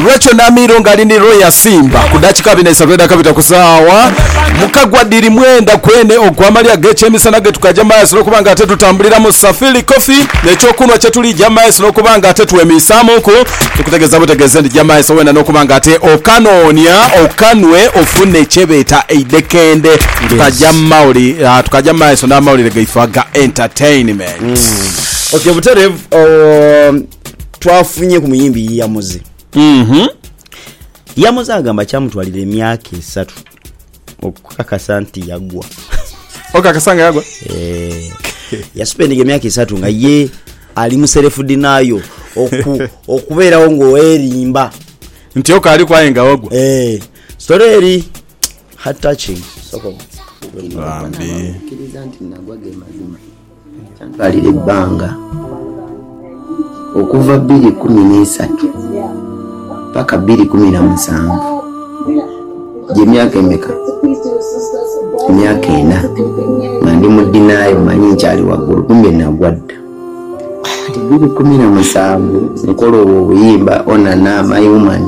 Rachael Namiiro ng'ali ni Roya Simba ku dakika bina isatu edha kabita ku saawa mukagwa dhiri mwenda gwene ogw'amalya g'ekyemisana ge tukaja mu maiso n'okuba nga ate tutambulira mu Safili Coffee n'ekyokunhwa kye tulija mu maiso n'okuba nga ate twemiisaamuku tukutegeeza butegeeze nti ja mu maiso weena n'okuba nga ate okanoonia okanwe ofune kye beeta eidhekende tukaja mu mawuli ah, tukaja mu maiso n'amawulire gaife aga entertainment. Okyo buterevu oh, twafunye ku muyimbi Yamuze. Mm-hmm. Yamuze agamba kyamutwalira emyaka esatu okukakasa nti yagwa. Okakasa nga yagwa? Eh, yasupendinga emyaka esatu nga ye ali muserefu dinayo oku, okubeerawo ng'oerimba nti okaali kwaye nga wagwa eh, story eri heart touching soko bambi Kyantwalira ebbanga okuva bbiri kumi n'eisatu paka bbiri kumi na musanvu. Gye myaka emeka? Myaka ena nga ndi mu denial, manyi nkyali waggulu kumbe nagwa dda. Ati bbiri kumi na musanvu nkola obwo obuyimba Onana, My Woman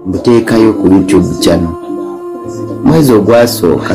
mbuteekayo ku YouTube channel. Mwezi ogwasooka...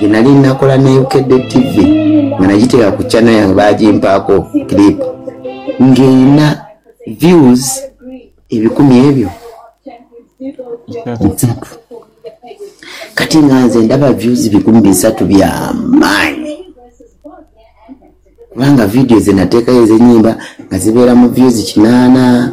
gye nali nnakola ne Ukedde Ttivvi nga nagiteeka ku channel yange baagimpaaku clip ng'erina views ebikumi ebyo bisatu. Kati nga nze ndaba views bikumi bisatu bya maanyi kubanga vidiyo ze nateekayo ez'ennyimba nga zibeera mu views kinaana.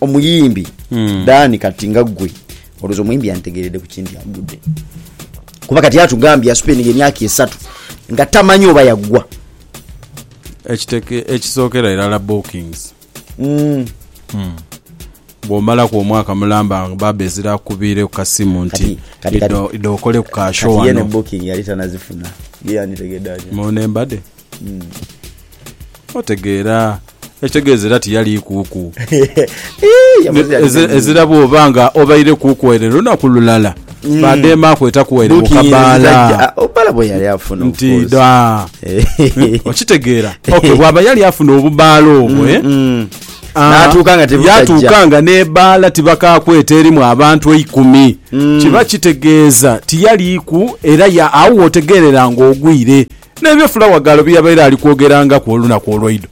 Omuyimbi Dan kati nga gwe olowooza omuyimbi yantegeeredde ku ki nti agudde? Kuba kati yatugambye yasupendinga emyaka esatu nga tamanyi oba yaggwa. Ekiteke ekisookera irala bookings. Bw'omalaku omwaka mulamba nga baaba ezira akubiire ku kasimu nti Kati- kati- kati- idho idho okoleku ka show Kati ye ne wano. booking yali tanazifuna. Ye yanditegedde atya? Mu ne mbade. Otegeera, ekitegeeza era tiyali kuuku. Ii, yakoze Eze- yadibeni. Ezira bwoba nga obaire kuuku ere lunaku lulala bademaaku etaku ere Booking eno bukabaala. eziraja- ah, obala bwe yali afuna of Nti course. da. Eh, Okitegeera. Okay, bwaba yali afuna obubaala obwo eh? mm. Ah, N'atuuka nga tebutajja. yatuuka nga n'ebaala tibakakweta erimu abantu eikumi Mm. kiba kitegeeza tiyaliiku era ya- awo wotegeerera ng'ogwire N'ebyo Fulawagaalo bye yabaire ali kwogerangaku olunaku olwaidho.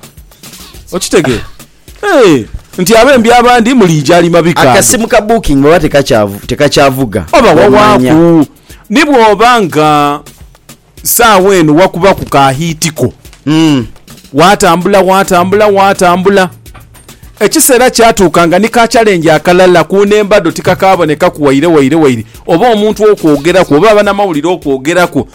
Okitegeera? Eeh, nti abembi abandi muliija ali mabika ago. Akasimu ka booking oba tekakyavuga? Oba wawaaku, ni bw'oba nga saagha eno wakubaku ka hiiti ko. Waatambula, waatambula, waatambula. Ekiseera kyatuuka nga ni ka challenge akalala ku nhemba dho tikakaabonekaku waire waire waire oba omuntu okwogeraku oba abanamawulire okwogeraku